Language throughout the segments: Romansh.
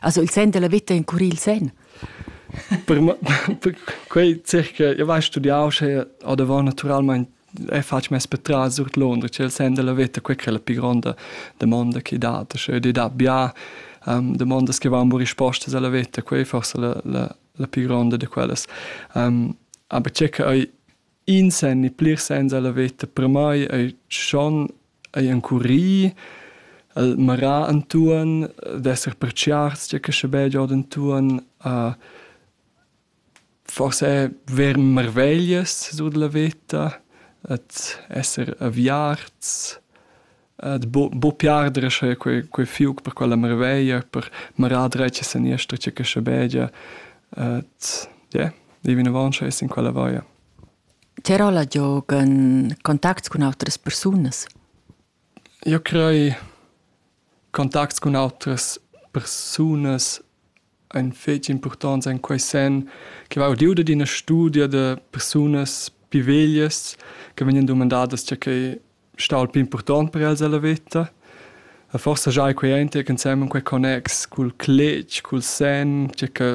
Ha il sen della vita encurì il sen? per, per quei circa io vai studiau sche adavant naturalmente e faccio mes patras sur Londra c'è il sen della vita quella che è la più grande domanda che dà cioè di da bia um, domandas che vanno risposte alla vita quei forse la, la, la più grande di quelles um, aber c'è che In sen e plirs sens a la veta per mai ei schon ei encurì, el marà entuorn, d'esser pertgiarts gia che sche be giod entuorn, a forse ver marveglias sur la veta, ad esser aviarts, Buc buc pli arder sche quei quei fiug per quella marveglia, per marar dretg e seniester tgei che schabegia. Ie, ir vinavon sche es in quella vaia. Ti rolla giog en contacts cun autras persunas? Io crei contacts cun autras persunas ein fetg impurtonts en quei senn che va udiu dad ina studia da persunas pi veglias che vegnan dumandadas tgei ch'ei stau il pli impurtont per els ella veta. E forsa giai quei ein tier ensemen quei connex cul cletg, cul senn, tgei che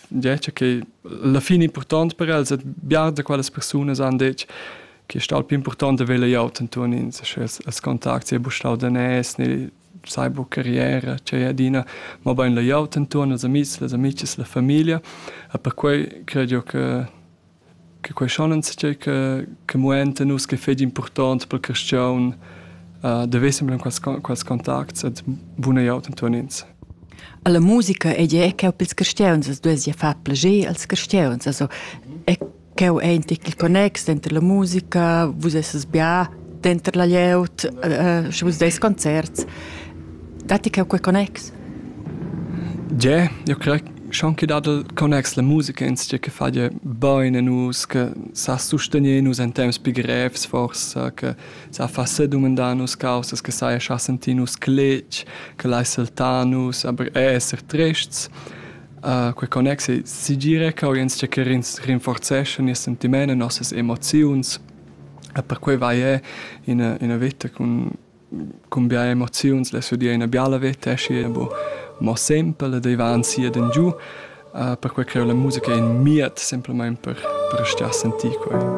ja, tgei ch'ei alla fin impurtont per els e bia da quellas persunas han detg che ei stau il pli impurtont da vegl glieud entuorn ins, sche els, els contacts ei buc stau daners ne Sai buca rier, tgei adina, mobein la glieud entuorn, ils amis, las amices, la famiglia. E perquei cred jeu che che quei schon enzatgei che che muenta nus ch'ei fetg impurtont per il carstgaun da veser semper quels quels contacts ed buna glieud entuorn ins. Alla musica ei ei cheu pils carstgauns, as duess ja far plager als carstgauns, also e Cheu einti il connex denter la musica, vus esses bia denter la glieud, eh, sche vus deis concerts. Datti cheu quei connex? Ge, io crei schon che dat il connex la musica ins che fa je bene nus che sa sustenier nus in temps pi grevs forse che sa fa se domandar nus causas che sai scha senti nus clec che lai saltar nus aber esser trests Uh, quei connex ei segira che agens tscheccherins rinforzeschan nies sentiment e nossas emoziuns. E per quei vai è ina, ina vita cun, cun bia emoziuns, le sue dir ina biala vita, esci è bo mo semple, dei va ansia den giù, uh, per quei che la musica è in miet semplicemente per, per stia sentire quei.